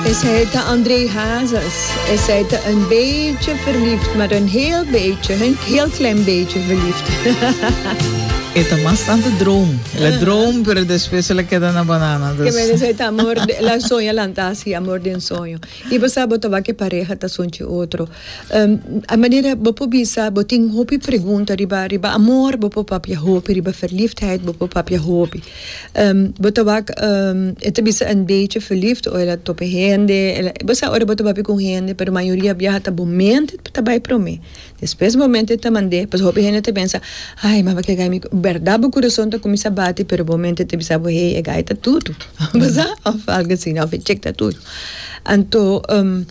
Esei ta André Hazes. Esei ta un beetje verliefd, maar een heel beetje, een heel klein beetje verliefd. E ta mas tanto droom. El a droom, pero despues el a keda na banana. Ke men esei ta amor, el a soña lanta asi, amor den soño. I bo sa bo ta wak e pareha ta sunchi otro. a manera bo por bisa bo tin hopi pregunta riba riba amor bo por papia hopi, riba verliefdheid bo por papia hopi. Ehm, bo ta wak, ehm, e ta bisa en beetje verliefd ora ta tope hende, el, bo sa ora bo ta papia cu un hende, pero mayoria biaha ta bo mente ta ta bay prome, despues bo mente ta mande, pasobra hopi hende ta pensa, ay, maba ke gay mi, berdad bo curason ta cuminsa bati, pero bo mente ta bisa bo, hey, e gay ta tutu, bo sa, of algo asina, of e chick ta tutu. Anto, ehm.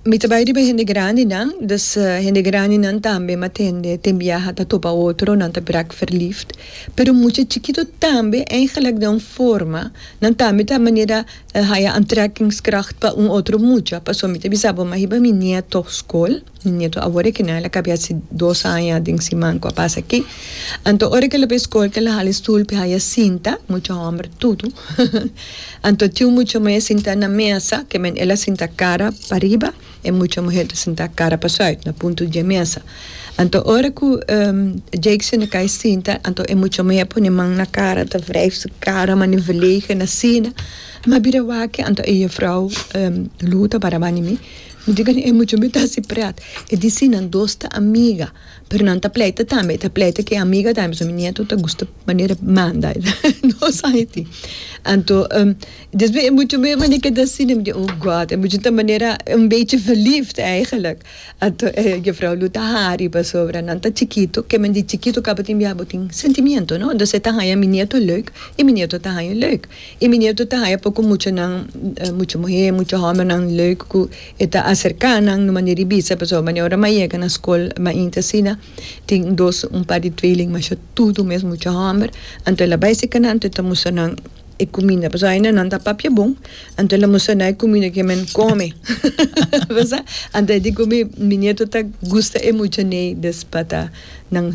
Mi ta bai riba hende grandinan, dus hende grandinan tambe m'a tende t'e biaha ta topa otro, nan ta brak verliefd. Pero mucha chikito tambe, eigenlijk den un forma, nan tambe ta manera haya aantrekkingskracht pa un otro mucha. Pasobra mi ta bisa bo, m'a hiba mi nieto skol. Mi nieto awor e kende a lak a bias si dos aña den siman ku a pasa aki. Anto ora ku el a bai skol kel a hala e stul pa e haya sinta, mucha hòmber tudu. Anto tin un mucha muhé sinta na mesa, ke men el a sinta kara pariba, e mucha muhé ta sinta kara pasùit na puntu di e mesa. Anto ora ku Jakeson a kai sinta, anto e mucha muhé pone man na kara, ta wrijf su kara mane velegen asina. Mi a bira wak, anto e yefrou Lou ta baraba di mi. Mi di kende, e muchanan ta hasi prèt. E di si, nan dos ta amiga, pero nan ta pleita tambe. E ta pleita ku e amiga tambe. So mi nieto ta gusta manera manda dos añiti. Anto, despues e muchanan bai manda kende asina. Mi di, oh God! E muchanan ta manera un bechi verliefd eigenlijk. Anto e Juffrouw Lou ta hari pasobra nan ta chikitu. Ke men di chikitu kabatin bia bo tin sentimiento, no? Dus e ta haña mi nieto leuk i mi nieto ta haña leuk. E minetu ta haña poko muchanan, mucha muhé, mucha hòmbernan lèuk ku e ta aserká nan un manera di bisa. Pasobra manera ora m'a yega na skol mainti asina, tin un dos, un par di tweeling masha tudu mes mucha hòmber. Anto el a bai sika nan, anto el ta mustra nan e kuminda. Pasobra ainda nan ta papia bon, anto el a mustra nan e kuminda ku e men kome. Anto e di ku mi minetu ta gusta e muchanei des pa ta nan.